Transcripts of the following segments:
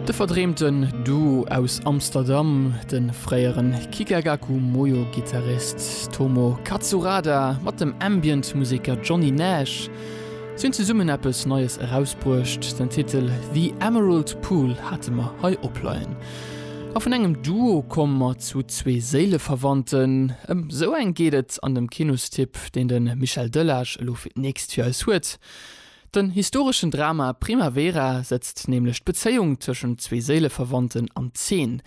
De verdreemten Duo aus Amsterdam, de fréieren Kikagaku Moyo-Gittarist Tomo Katsurada mat dem Ambient-Museker Johnny Nash, si hunn zesummen eppes Neies erausbruecht. Den Titel The Emerald Pool hate mer hei opleien. A vun engem Duo komme mer zu zwee Séileverwandten. Ëm esou eng geet et an dem Kinostipp, deen de Michel Delage elo fir d'nächst fir eis huet. Den historeschen Drama Primavera setzt nämlech d'Bezéiung tëschent zwee Séileverwandten an Zeen,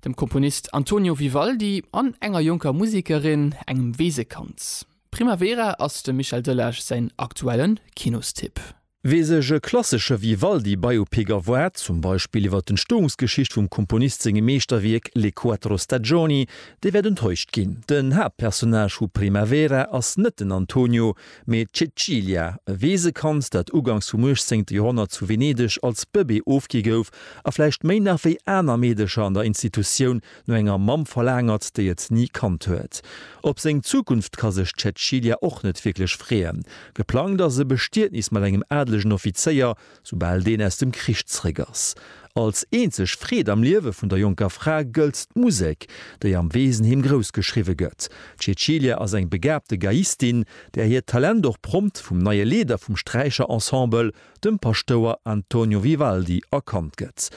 dem Komponist Antonio Vivaldi an enger jonker Musekerin, engem Weesekand. Primavera ass dem Michel Delage säin aktuellen Kinostipp. Wee sech e klassesche Vivaldi-Biopic erwaart, zum Beispill iwwer d'Entstoungsgeschicht vum Komponist sengem Meeschterwierk Le quattro stagioni, dee wäert enttäuscht ginn. Den Haaptpersonnage vu Primavera ass net den Antonio, Mee d'Cecilia, e Weesekand, dat uganks vum 18. Joerhonnert zu Venedeg als Bëbee ofgi gouf a vläicht méi nach wéi aner Meedecher an der Institutioun no enger Mamm verlaangert, déi et ni kannt huet. Op seng Zukunft ka sech d'Cecilia och net wierklech freeën. Geplangt ass e Bestietnis mat engem adelegen Offizéier, soubal deen aus dem Krich zréck ass. Als eenzeg Freed am Liewe vun der jonker Fra gëllt d'Musek, déi am Weesenheem grouss geschriwwe gëtt. D'Cecilia ass eng begabte Geiistin, där hiert Talent och prompt vum neie Leeder vum Sträicherensemble, dem Paschtouer Antonio Vivaldi, erkannt gëtt.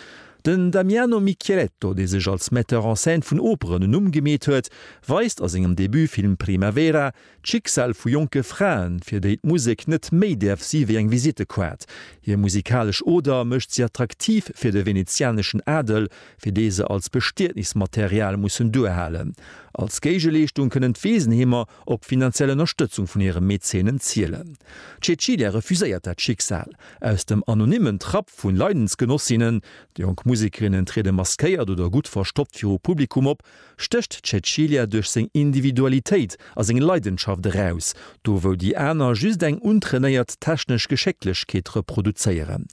Den Damiano Micheletto, dee sech als Metteur en scène vun Operen en Numm gemeet huet, weist a sengem Debutfilm Primavera, D'Schicksal vu jonke Fraen, fir déi d'Musek net méi däerf si wéi eng Visittekaart. Hir musikalesch Oder mécht si attraktiv fir de venezianeschen Adel, fir dee se als Bestietnismaterial mussen duerhalen. Als Géigeleeschtung kënnen d'Weesenheemer op finanziell Ënnerstëtzung vun hire Mäzenen zielen. D'Cecilia refuséiert dat Schicksal. Aus dem anonymmen Trapp vu Leidensgenossinnen, jonk Musekerinnen triede maskéiert oder gutt verstoppt viru Publikum op, stécht d'Cäcilia duerch seng Individualitéit a seng Leidenschaft eraus, do wou déi aner just eng untrainéiert technesch Geschécklechkeet reproduzéieren.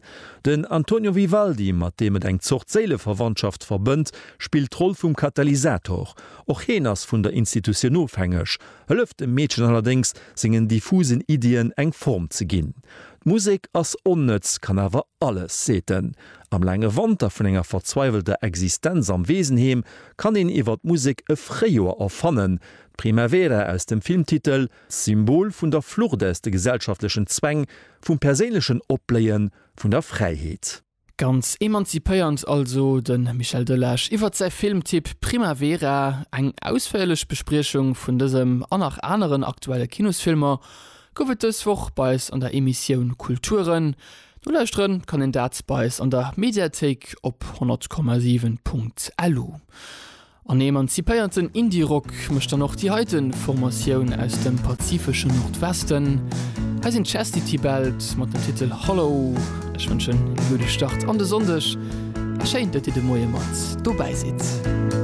Den Antonio Vivaldi, mat deem et eng Zort Séileverwandschaft verbënnt, spillt d'Roll vum Katalysator. Och heen ass vun der Institutioun ofhängeg, hëlleft dem Meedchen allerdéngs, sengen diffusen Iddien eng Form ze ginn. D'Musek ass onnëtz, kann awer alles, seet en. Am laange Wanter vun enger verzweiwelter Existenz am Weesenheem kann een iwwer d'Musek e Fréijoer erfannen. D'Primavera aus dem Filmtitel, Symbol vun der Flucht aus de gesellschaftlechen Zwäng, vum perséinlechen Opbléie vun der Fräiheet. Ganz emanzipéiernd also de Michel Delage iwwer säi Filmtipp Primavera. Eng ausféierlech Bespriechung vun dësem an nach aneren aktuelle Kinosfilmer Gouf et dës Woch bei eis an der Emissioun Kulturen. Nolauschteren kann een dat bei eis an der Mediathéik op 100,7.lu. En emanzipéierten Indie-Rock mécht dann och déi heiten Formatioun aus dem pazifeschen Nordwesten. Hei sinn Chastity Belt mat dem Titel Hollow. Ech wënschen ee gudde Start an de Sonndeg a schéin, datt Dir de Moie mat dobäi sidd.